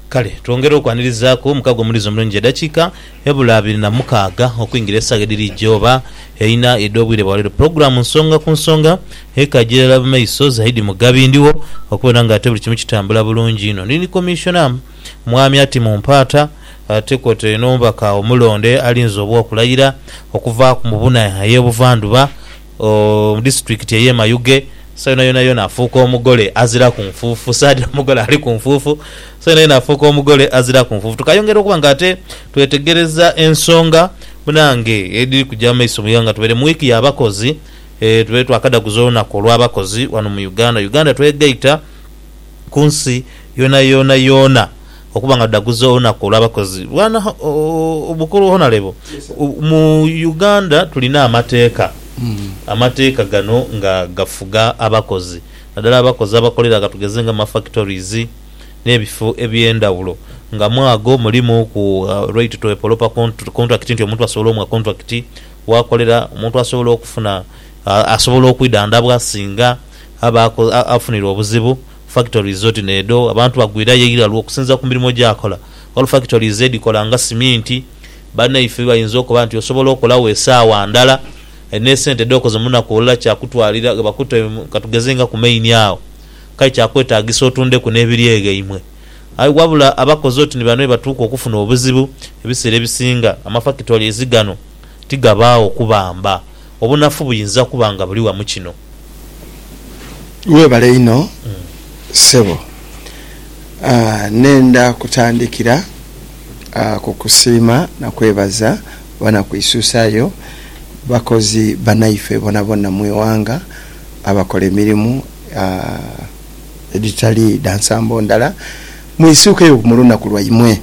Kale twongere okwanirizaku omukago omuliiza omulungi edakiika ebula abiri na mukaaga okwingira esaawa edhiri jooba eina edh'obwire bwa leero. Pulogulaamu nsonga ku nsonga ekaja irala mu maiso zaidi Mugabi ndhigho okubona nga ate buli kimu kitambula bulungi inho. Ndhi ni Commissioner Mwami Ati Mumpaata ate kwotaire n'omubaka omulonde alinze obw'okulayira okuva mu buna ey'ebuvandhuba Ooh mu district eye Mayuge so yona yona yona afuuka omugole aziraku nfuufu saadi omugole aliku nfuufu so yona yona afuuka omugole aziraku nfuufu tukayongera okuba nga ate twetegereza ensonga munange ediri kuja mumaiso mu ighanga tubaire mu week ya bakozi eeh tubaire twakadaguza olunaku olwa bakozi wano mu Uganda Uganda twegaita kunsi yona yona yona. Okuba nga tudhaguza olunaku olw'abakozi lwana obukulu Honalebo, mu Uganda tulina amateeka, amateeka gano nga gafuga abakozi nadala abakozi abakolera gha tugeze nga mu ma factories n'ebifo eby'endhawulo nga mwaago mulimu ku right to a poloper contract nti omuntu asobola omuwa contract w'akolera, omuntu asobola okufuna asobola okwidhandhabwa singa aba afunirwa obuzibu Factories oti n'edho abantu bagwirayo eighiralwa okusinziira ku mirimo gy'akola. Ghaligho factories edhikola nga siminti. Banaife bayinza okuba nti osobola okolagho esaawa ndala aye n'esente dh'okoze mu lunaku olulala kyakutwalira ghe bakute katugeze nga ku maini agho kale kyakwetaagisa otundeku n'ebiryeghaimwe. Aye wabula abakozi oti ni bano be batuuka okufuna obuzibu. Ebiseera ebisinga ama factories ghano ti gabaagho kubamba. Obunafu buyinza kuba nga buli wa mu kino. Webale inho ssebo. Nenda kutandikira ku kusiima na kwebaza banakuisusayo, bakozi banaife bonabona mu ighanga abakola emirimu edhitali dha nsambo ndala. Mwisuukeyo ku mu lunaku lwaimwe.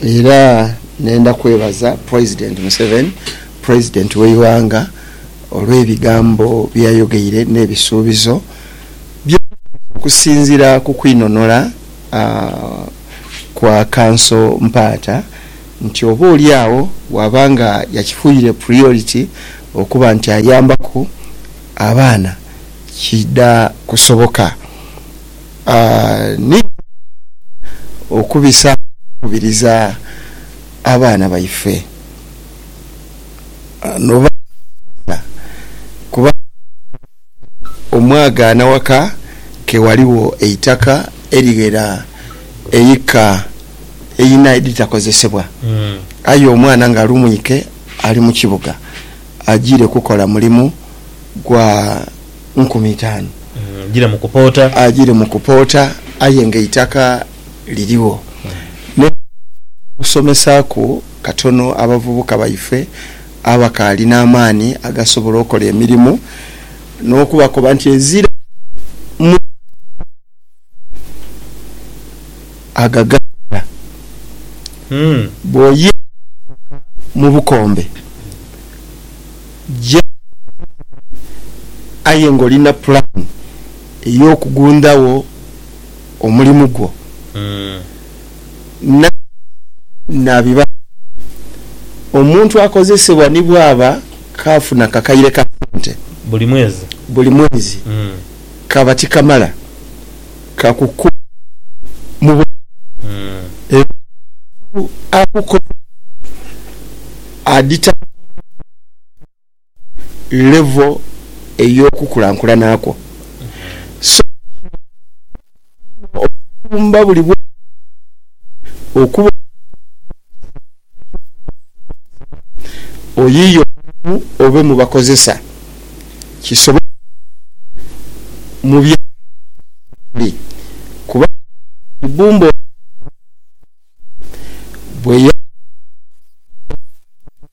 Era nenda kwebaza President Museveni President w'eighanga olw'ebigambo byeyayogeire n'ebisuubizo byeyakiriza okusinzira ku kwinonora kwa Kanso Mpaata nti oba oli agho bwaba nga yakifuire priority okuba nti ayambaku abaana kiidha kusoboka ni okubisaamu okukubiriza abaana baife. noba nga kuba omwagaana waka ke waligho eitaka erighera eika eina edhitakozesebwa aye omwana nga ali mwike ali mu kibuga ajiire kukola mulimu gwa nkumi itaanu, ajiire mu kupoota aye nga eitaka. lirigho ne kusomesaaku katono abavubuka baife abakaali n'amaani agasobola okola emirimu n'okubakoba nti ezira mu agaganda bw'oyenda okutuuka mu bukombe gya aye ng'oli na pulaani ey'okugundhagho. omulimu gwo, na naabibala bye. Omuntu akozesebwa ni bw'aba kaafuna akakaire ka sente buli mwezi, kaba tikamala kakukuuma mu bulamu. Era omuntu akukozesa adhitambuliramu. level ey'okukulankulana kwo. So, kino kyaamba omusumba buli bwire okuba omukozesa w'ekisolo ekiri mu kukozesebwa, oyiye omulimu obe mu bakozesa kisobole okutuuka mu byetaago mwetuli kuba Kibumba ono bweyali aghumwire.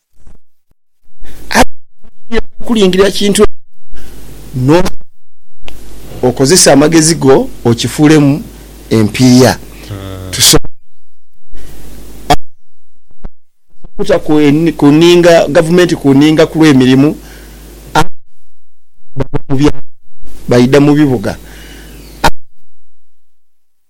Aye bw'oba nga oidhi okulingirira kintu ekyo n'osobola okozesa amagezi go okifuulemu empiiya, tusobole okuta ku nninga gavumenti ku nninga ku lw'emirimu abaana bava mu byalo baidha mu bibuga.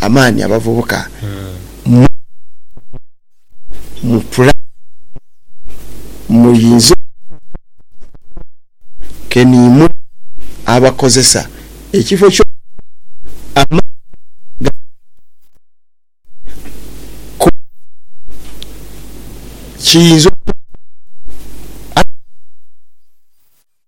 amaani abavubuka mu mu pulaani eno muyinze okubaako ke niimuwa abakozesa ekifo ky'okubawa amaani agasingayo ku kiyinza okubakolebwa abavubuka.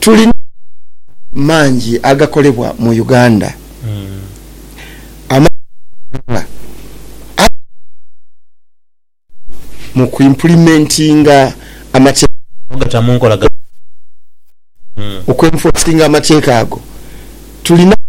Tulina amakolero mangi agakolebwa mu Uganda. Amakolero gano aye gakolamu mu kwimpulimentinga amateeka ago. Okwenfosinga amateeka ago, tulina amakolero mangi.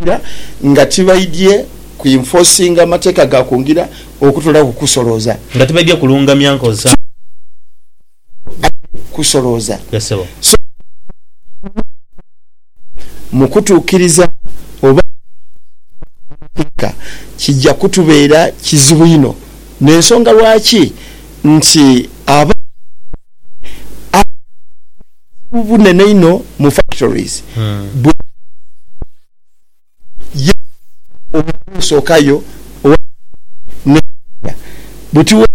okusinziira nga tibaidhye ku enforcinga amateeka ga ku ngira okutoolaku ku kusolooza. Nga tibaidhye kulungamya nkozesa. Tibaidhye kusolooza. Yes ssebo. So nga tibaidhye mu kutuukiriza oba okusinziira ku mateeka kijja kutubeera kizibu inho n'ensonga lwaki. nti abaana abaana abato obuzibu bunene inho mu factories bwa ye omwana osooka yo owa ne mpiiya buti we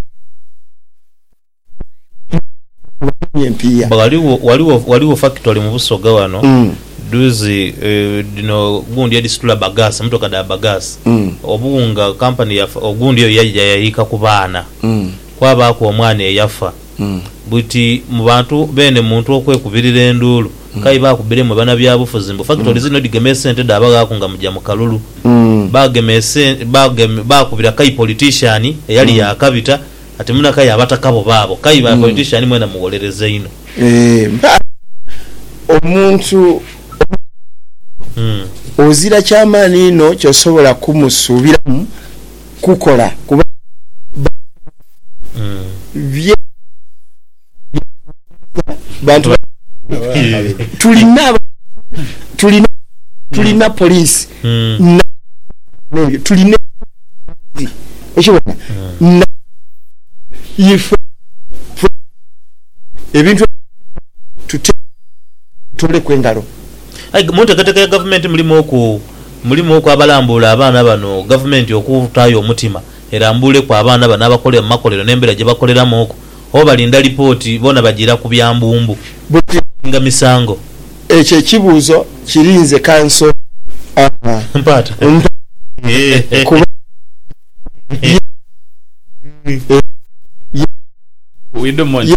bw'afunye empiiya. Ghaligho ghaligho ghaligho factory mu Busoga ghano dhuuzi dhino gundi edhisitula bagaasi, mmotoka dha bagaasi, obuwunga company ya ogundi eyo yaidha yayiika ku baana. kwabaaku omwana eyafa. Buti mu bantu beene muntu okwekubirira enduulu, k'aye baakubire mwe banabyabufuzi mbu fakitoli ziino dhigema esente dhaaba ghaaku nga muja mu kalulu. Baagema esente, baakubira k'aye politician eyali yaakabita ati muna k'aye abataka bo baabo. K'aye ba politician mwena mugholereza inho. Eeh mpaa omuntu omughanvu ozira ky'amaani inho ky'osobola kumusuubiramu kukola kuba bye bantu ba tulina tulina tulina police tulina okibona ife ebintu tuteku engalo. Aye munteekateeka ya gavumenti mulimu oku. Mulimuuku abalambuula abaana bano gavumenti okutaayo omutima erambuuleku abaana bano abakolera mu makolero n'embeera gye bakoleramuuku oba balinda lipooti boona bajiira ku bya mbumbu. Buti muwinga misango? Ekyo ekibuuzo kiri nze kanso a Mpaata. mpaate kuba ye ye ye We do mon ye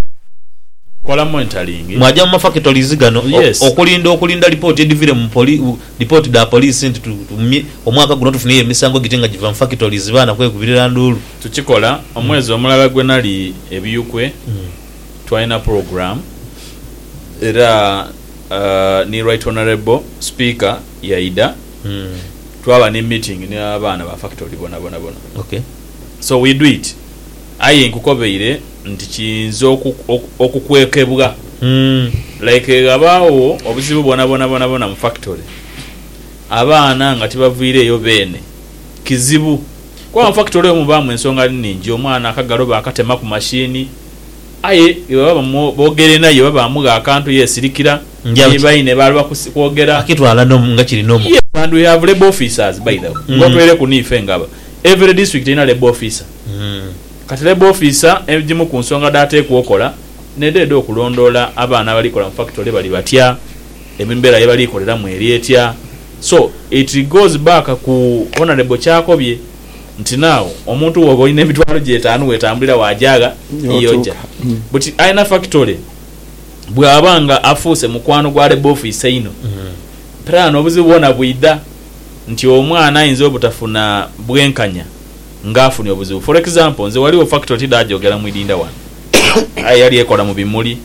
kola monitoring. Mwaja mu mafakitolizi gano okulinda okulinda lipooti edhivire mu poli. Lipooti dha poliisi nti tuumye omwaka guno tufunyeyo emisango giti nga giva mu factories baana kwekubirira nduulu. Tukikola, omwezi omulala gwe nali e Biyukwe twalina program era ni Right Honourable Speaker yaidha twaba ni meeting ni abaana ba factory bonabona bona so we do it aye nkukobeire. nti kiyinza okukwekebwa like ghabagho obuzibu bwonabwona bwonabwona mu factory abaana nga tibavwireyo beene kizibu kuba mu factory omwo mubaamu ensonga nhingi omwana akagalo baakatema ku machine aye bwebaba boogere naye oba baamugha akantu yeesirikira ni baine baaloba kwogera yes and we have labour officers by the way ng'otoireku n'ife nga every district erina labour officer. Kati Labour ofiisa ejimu ku nsonga dh'ateekwa okola n'edho edh'okulondoola abaana abali kola mu fakitole bali batya, embeera ye bali koleramu eri etya so it goes back ku Honourable ky'akobye nti now omuntu bw'oba olina emitwalo gye etaanu wetambulira waajaagha y'oja but alina fakitole bw'aba nga afuuse mukwano gwa Labour ofiisa einho piraani obuzibu bwona bwidha nti omwana ayinza obutafuna bwenkanya. nga afunye obuzibu. For example, nze ghaligho factory tidhagyogera mu idindha ghano aye yali ekola mu bimuli.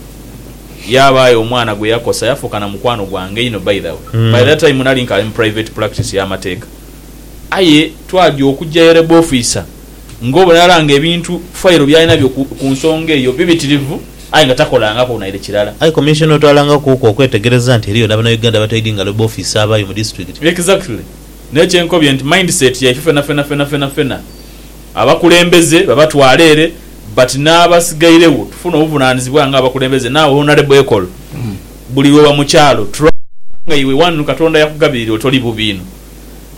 Yaabaayo omwana gwe yakosa yafuuka na mukwano gwange inho by the way. By that time nali nkaali mu private practice ya mateeka. Aye twagya okugya ye Labour Officer nga obona irala nga ebintu, file byalina byo ku ku nsonga eyo bibitirivu aye nga takolangaku naire kirala. Aye Commissioner otwalangakuku okwetegereza nti eriyo na Banauganda abataidhi nga Labour Officer abaayo mu district. Exactly. Naye kye nkobye nti mindset yaife fenafena fenafenafena abakulembeze babatwala ere but n'abasigairegho tufune obuvunanizibwa nga abakulembeze naawe honourable ekol buli lwoba mu kyalo try kubanga iwe one katonda yakugabirira oti oli bubi inho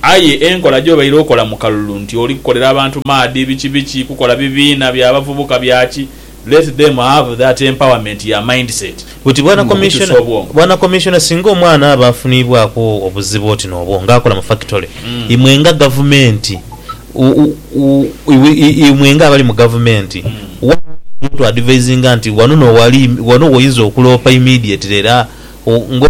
aye enkola gyobaire okola mu kalulu nti oli kukolera abantu maadi biki biki kukola bibiina bya bavubuka bya ki Let them have that empowerment ya mindset Buti Bwana mu kutusa Commissioner, obwongo. Bwana Commissioner singa omwana aba afunibwaku obuzibu oti n'obwo nga akola mu factory, imwe nga gavumenti, u, u, u, iwe, i, imwe nga abali mu gavumenti, wa oyinza otu advisinga nti wano no wali, wano woyinza okuloopa immediately era o, nga o,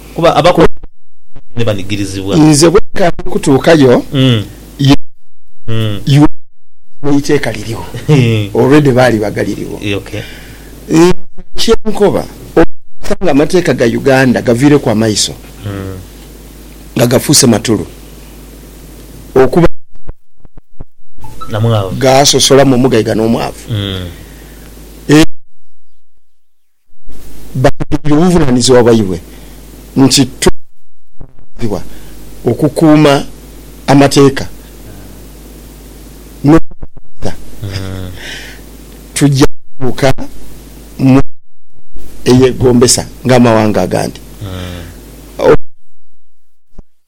Kuba abakulu ba Isiraeli ni banigirizibwa. Nze bwe nkaali kutuukayo, ye Yoabu abateebwa eiteeka lirigho, already baali bagaririgho. Nze kye nkoba, okutuusa nga amateeka ga Uganda gaviireku amaiso, nga gafuuse matulu, okuba nga gaasosola mu omugaiga n'omwavu, era nga gaasosola mu omugaiga n'omwavu. Baaghaire obuvunaanyizibwa bwaibwe nti twakubirizibwa okukuuma amateeka n'okugaghulira. Tuja kutuuka mu nsi eyegombesa ng'amawanga agandi. Obuvunaanyizibwa bwaitu bwali bwa kukola